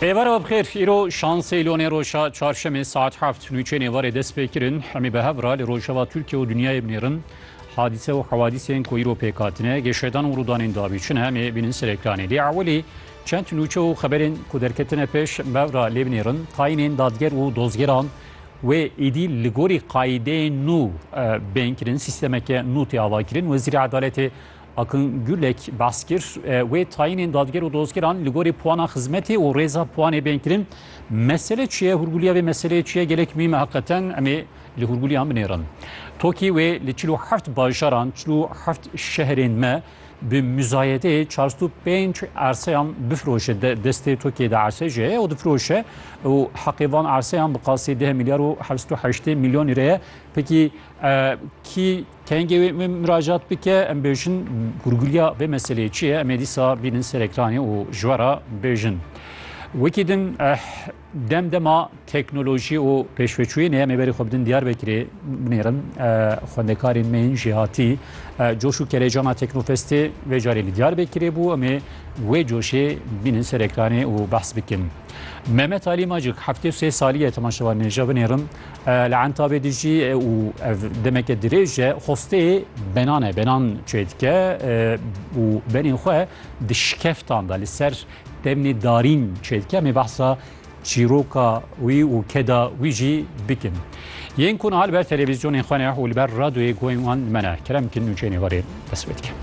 Êvara bi xêr, îro şansê lonê roja çarşemê saet heft nûçeyên êvarê dest pê kirin. Hemî bi hev ra li rojava Tirkiye û dinyayê binêrin. Hadîse û hewadîsên ku îro pêk hatine, geşedan û rûdanên davî çin hemê bînin ser ekranê. Lê ewilî çend nûçe û xeberên ku derketine pêş bi hev ra lê binêrin. Tayînên dadger û dozgeran wê êdî li gorî qayîdeyên nû bên kirin. Sîstemeke nû tê avakirin. Wezîrê Edaletê Akın Gülek behs kir wê tayînên dadger û dozgeran li gorî puana xizmetê û rêza puanê bên kirin. Mesele çi ye? Hûrgulîya vê meseleyê çi ye? Gelek mîm e heqeten em ê li hûrgulîyan binêrin. Tokî wê li çil û heft bajaran, çil û heft şehrên me bi muzayedeyê çar sed û pênc erseyan bifiroje. Destê Tokîyê de erse jê heye û difiroje û heqê van erseyan bi qasî deh milyar û heft sed û heştê milyon lîre ye. Pekî kî Kengê wê min miracat bike em bêjin gurguriya vê meseleyê çi ye em ê dîsa bînin ser ekranê û ji we re bêjin. Wekî din eh, dem dema teknolojî û pêşveçûyên em ê berî xwe bidin Diyarbekirê binêrin eh, xwendekarên me yên jêhatî eh, coş û kelejana Teknofestê vê carê li Diyarbekirê bû em ê wê coşê bînin ser ekranê û behs bikin. Mehmet Alî Macik heftê û sê salî ye temaşevanên jê binêrin Li Entabê dijî û ev demeke dirêj e xostê benan e benan çê dike û benên xwe di şikeftan da li ser demnê darîn çê dike mê behsa çîroka wî û keda wî jî bikin. Yên ku niha li ber televîzyonên xwe ne û li ber radyoyê guhên wan li me ne kerem bikin nûçeyên ê warê dest pê dikin.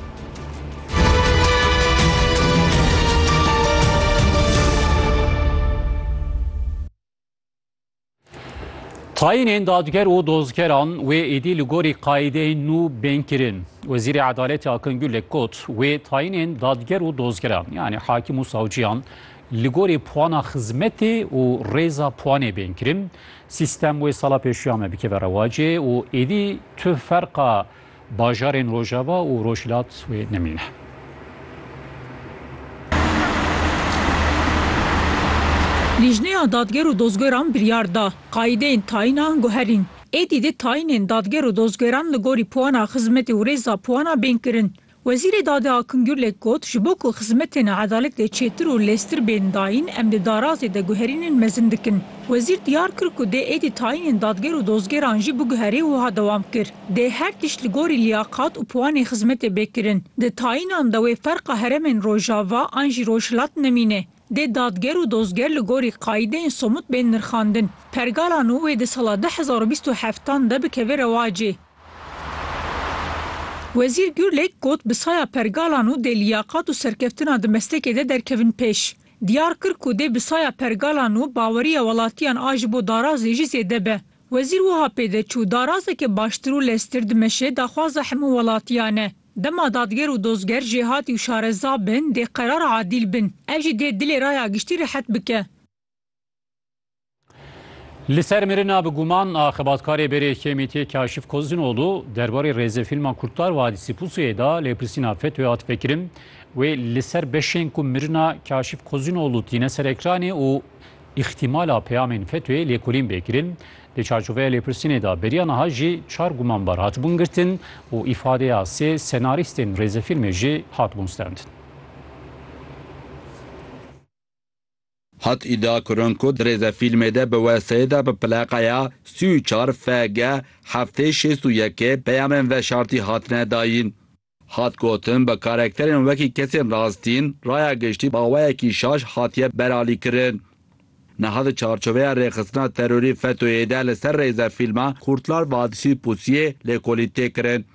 Tayînên dadger û dozgeran wê êdî li gorî qaîdeyên nû bên kirin. Wezîrê Edaletê Akin Gulek got, wê tayînên dadger û dozgeran yanî hakim û savciyan li gorî puana xizmetê û rêza puanê bên kirin. Sîstem wê sala pêşiya me bikeve rewacê û êdî tu ferqa Bajarên Rojava û Rojhilat wê nemîne. Lîjneya Dadger û Dozgeran biryar da, qayîdeyên tayîna guherîn. Êdî dê tayînên dadger û dozgeran li gorî puana xizmetê û rêza puana bên kirin. Wezîrê Dadê Akim Gurlek got, Ji bo ku xizmetên edaletê çêtir û lêztir bên dayîn em dê darazê de guherînên mezin dikin. Wezîr diyar kir ku dê êdî tayînên dadger û dozgeran jî biguherê wiha dewam kir, Dê her tişt li gorî liyaqat û piwanê xizmetê bê kirin. Di tayînan de wê ferqa heremên Rojava an jî Rojhilat nemîne. Dê dadger û dozger li gorî qayîdeyên somut bên nirxandin. Pergala nû wê di sala du hezar û bîst û heft an de bikeve rewacê. Wezîr Gurlek got bi saya pergala nû dê liyaqat û serkeftina di meslekê de derkevin pêş. Diyar kir ku dê bi saya pergala nû baweriya welatiyan a ji bo darazê jî zêde be. Wezîr wiha pê de çû, Darazeke baştir û leztir dimeşe daxwaza hemû welatiyan e. Dema dadger û dozger jêhatî û şareza bin, dê qerar adîl bin. Ev jî dê dilê raya giştî rehet bike. Li ser mirina bi guman a xebatkarê berê KMT'ê Kaşif Kozinoglu derbarê rêzefîlma Kurtlar Vadisi Pusuyê de lêpirsîna FETÖ'yê hat vekirin. Wê li ser beşên ku mirina Kaşif Kozinoglu tîne ser ekranê û Îxtîmala peyamên FETÖ'yê lêkolîn bê kirin. Di çarçoveya lêpirsînê de beriya niha jî çar gumanbar hatibûn girtin û îfadeya sê senarîstên rêzefîlmê jî hatibûn stend. Hat îdia kirin ku di rêzefîlmê de bi weseyê de bi pleqeya sî û çar FG heftê şêst û yekê peyamên veşartî hatine dayîn. Hat gotin, bi karekterên wekî kesên rastîn, raya giştî baweyekî şaş hatiye beralîkirin. Niha di çarçoveya rêxistina terorî FETÖ'yê de li ser rêze fîlma Kurtlar Vadisi Pusu'yê lêkolîn tê kirin.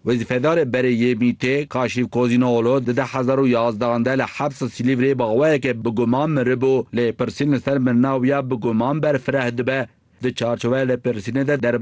Wezîfedarê berê yê MĪT'ê Kaşif Kozînoğlu di du hezar û yazdehan de li hepsa Silîvrê baweyeke bi guman miribû, lêpirsîn li ser mirina wî ya bi guman berfireh dibe. Di çarçoveya lêpirsînê de derbarê